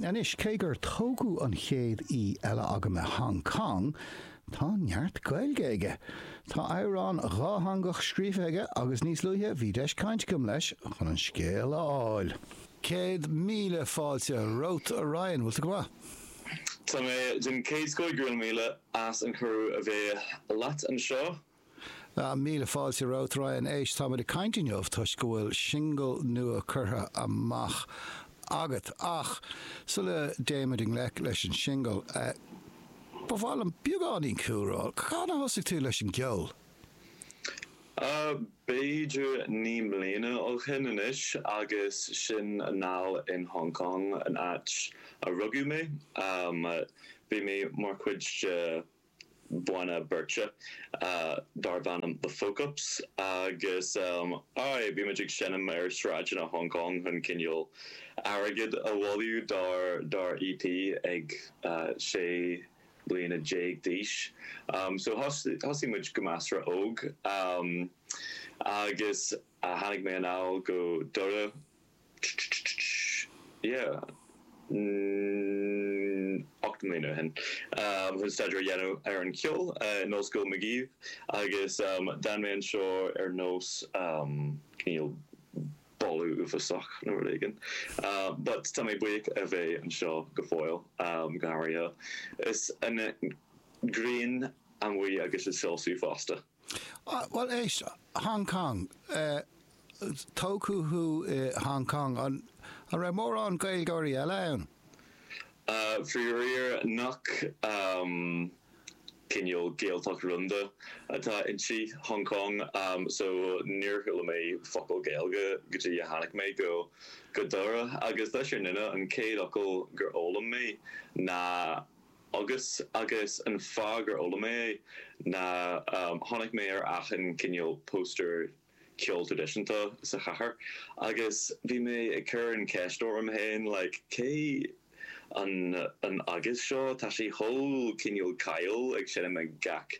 Anois, cé gur tógadh an chéad aoi eile agam i Hong Cong, tá neart Gaeilge aige. Tá amhrán dátheangach scríofa aige agus níos luaithe bhí deis cainte agam leis chun an scéal a fháil. Céad míle fáilte romhat, a Ryan. Bhfuil tú go maith? Tá mé den chéad scoth. Go raibh míle as an cuireadh a bheith leat anseo. Míle fáilte romhat, a Ryan éist. Táimid ag caint inniu toisc go bhfuil singil nua curtha amach agat ach sula dtéimid i ngleic leis an singil, ba mhaith liom beagáinín cúlra. Cathain a thosaigh tú leis an gceol? B'fhéidir naoi mbliana ó shin anois agus sin anall in Hong Kong, an áit a rugadh mé. Bhí mé mar chuid de banna beirte darb ainm The Folk Ups agus aye, bhí muid ag seinm ar sráideanna Hong Cong chun cineál airgead a bhailiú dár dár EP ag sé bliana déag d'aois so thosaigh muid go measartha óg agus tháinig mé anall go Doire yeah mm ocht mbliana ó shin um chun staidéar a dhéanamh ar an cheol in Ollscoil Magee agus um d'fhan mé anseo ar nós um cineál boladh uafásach nó rud éigin um but tá mé buíoch a bheith anseo go fóill um go háirithe is an ghrian amuigh agus ag soilsiú fosta. Bhuel éist, Hong Cong, tógadh thú i Hong Cong. An raibh mórán Gaeilgeoirí eile ann? Faraor chan cineál Gaeltacht rúnda atá inti, Hong Cong, so níor chuala mé focal Gaeilge go dtí gur tháinig mé go Doire agus sílim gurb é an chéad fhocal gur fhoghlaim mé ná agus agus an fáth gur fhoghlaim mé é ná chonaic mé ar achan cineál póstaer ceol traidisiúnta sa chathair agus bhí mé ag cur an cheist orm féin like cé an an agus seo tá sé chomh cineál cáiliúil ag seinm ag gach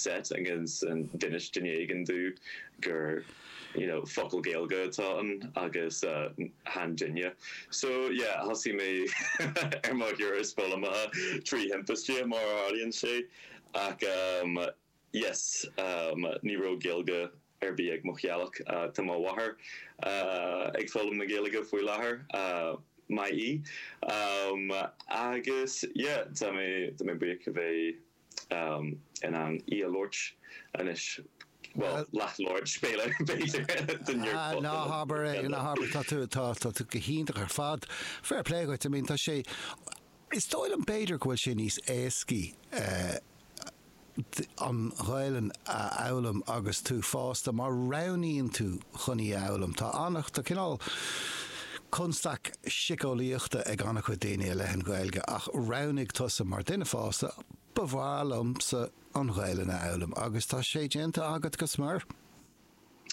set agus d'inis duine éigin domh gur. you know focal Gaeilge atá ann agus chan duine so yeah thosaigh mé ar mo thuras foghlama trí thimpiste mar a tharlaíonn sé ach em yes em ní raibh Gaeilge ar bith ag mo theaghlach ah tá mo mháthair ah ag foghlaim na Gaeilge faoi láthair ah maith í em agus yeah tá mé tá mé buíoch a bheith in ann í a labhairt anois, bhuel, leathlabhairt, is féidir, b'fhéidir, den Neurphot. Ná habair é, ná habair, tá tú, tá, tá tú go hiontach ar fad. Fair play dhuit, I mean, tá sé, is dóigh liom, b'fhéidir, go bhfuil sé níos éascaí, eh, an Ghaelainn a fhoghlaim agus tú fásta, má roghnaíonn tú chun í a fhoghlaim. Tá an-, tá cineál, constaic siceolaíochta ag an-chuid daoine i leith na Gaeilge ach roghnaigh tusa mar duine fásta, ba mhaith liomsa an Ghaelainn a fhoghlaim agus tá sé déanta agat go smior.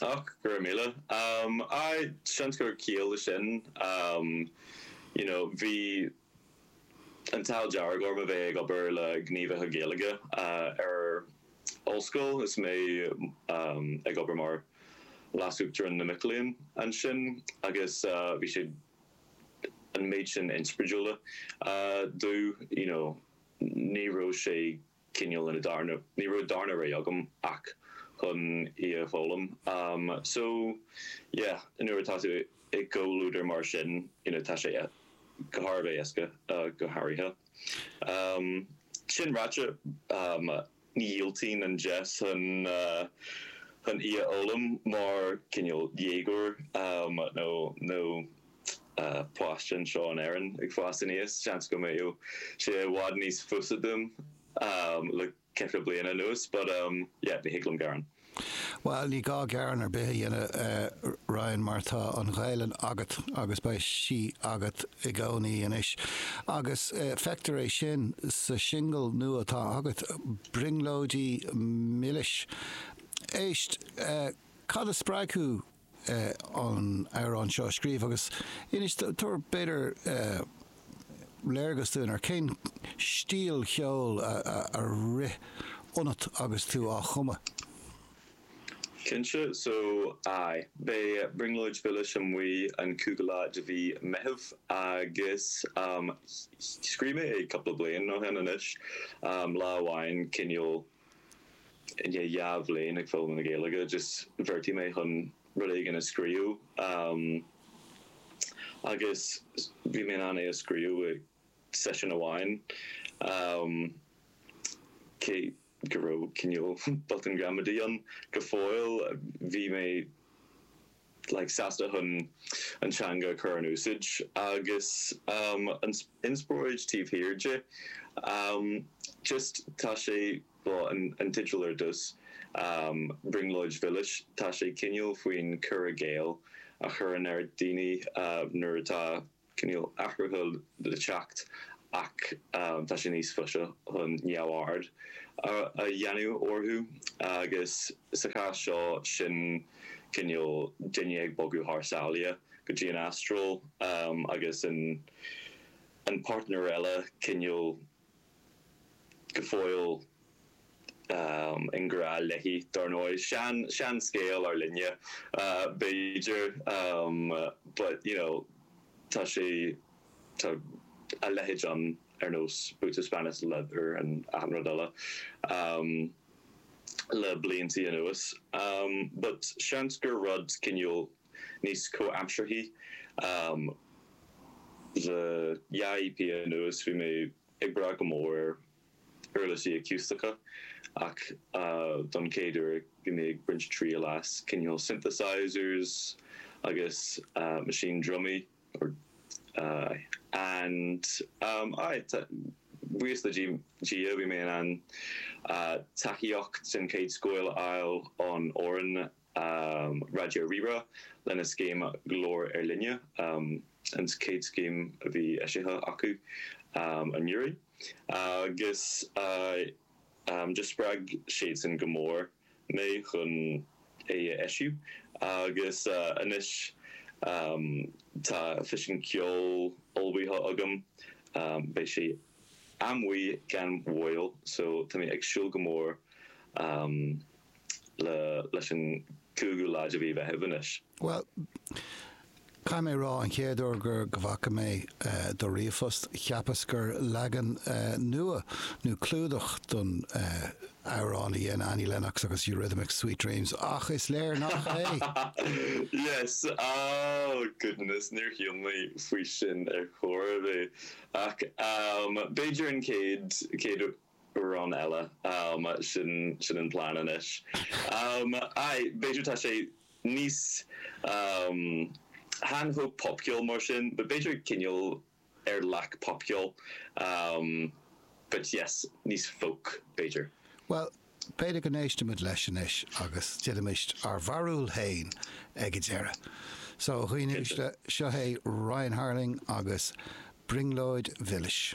Och, go raibh míle. Aye, seans go raibh ciall le sin. You know, bhí. An t-ádh dearg orm a bheith ag obair le gníomhaithe Gaeilge ar ollscoil is mé ag obair mar leasuachtarán na mac léinn ansin agus bhí sé an méid sin inspridúla domh you know ní raibh sé cineál ina darna, ní raibh darna rogha agam ach chun í a fhoghlaim. So yeah, nuair atá tú i gcomhluadar mar sin, you know, tá sé go han-éasca, go háirithe. Sin ráite, ní dhiúltaínn an deis chun í a fhoghlaim mar cineál déagóir nó. páiste anseo in Éirinn ag fás aníos, seans go mbeadh sé i bhfad níos fusa dom le ceithre bliana anuas but um yeah ní thig liom gearán. Bhuel, ní gá gearán ar bith a dhéanamh, a Ryan, mar tá an Ghaelainn agat agus beidh sí agat i gcónaí anois. Agus feictear é sin sa singil nua atá agat, 'Brionglóidí Milis'. Éist, cad a spreag thú an t-amhrán seo a scríobh agus inis, tabhair b'fhéidir léargas dúinn ar cén stíl cheoil a rith ionat agus tú á chumadh. Cinnte so aye beidh Brionglóid Mhilis amuigh an cúigiú lá de mhí Meitheamh agus scríobh mé é cúpla bliain ó shin anois, lá amháin cineál, I ndiaidh dhá bhliain ag foghlaim na Gaeilge, just bheartaigh mé chun rud éigin a scríobh agus bhí mé in ann é a scríobh i seisiún amháin, cé go raibh cineál botúin ghramadaí ann go fóill. Bhí mé. sásta chun an teanga a chur in úsáid agus an inspioráid taobh thiar di. just tá sé bhuel, an teideal ar dtús, Brionglóid Mhilis, tá sé cineál faoin cur i gcéill a chuireann ar dhaoine nuair atá. cineál athruithe le teacht ach tá sé níos fusa chun neamhaird a dhéanamh orthu agus sa chás seo sin cineál duine ag bogadh thar sáile go dtí an Astráil agus an páirtnéir eile cineál go fóill i ngrá léi, dár ndóigh. Sean-sean scéal ar líne, b'fhéidir, but, you know, tá sé, tá a leithéid ann ar nós Boots of Spanish Leather and achan rud eile le blianta anuas. But seans gur rud cineál níos comhaimsearthaí. Um le dhá EP anuas bhí mé ag brath go mór ar uirlisí aciústacha ach don chéad uair bhí mé ag baint triail as cineál synthesizers agus maisín drumaí or aye and um aye buíochas le Dia bhí mé in ann tacaíocht den chéad scoth a fháil ón fhoireann um Raidió Rí-Rá lena scéim Glór Ár Linne, um an chéad scéim a bhí eisithe acu um anuraidh, agus um do spreag siadsan go mór mé chun é a eisiú agus anois um tá fiseán ceoil ullmhaithe agam um beidh sé amuigh gan mhoill so tá mé ag súil go mór um le leis an gcúigiú lá de mhí Mheithimh anois. Bhuel, caithfidh mé a rá an chéad uair gur go bhfaca mé do ríomhphost, cheapas gur leagan nua nó clúdach don amhrán a dhein Annie Lennox agus Eurythmics, Sweet Dreams, ach is léir nach é! Yes, oh goodness, níor shíl mé faoi sin ar chor ar bith, ach b'fhéidir an chéad, chéad, Amhrán eile. Sin an plean anois. Aye, b'fhéidir tá sé níos chan chomh popcheoil mar sin but b'fhéidir cineál ar leath popcheoil but yes, níos folk b'fhéidir. Bhuel, b'fhéidir go n-éistfimid leis anois agus déanfaimid ár bharúil féin ag an deireadh. So, a dhaoine uaisle, seo é Ryan Harling agus Brionglóid Mhilis.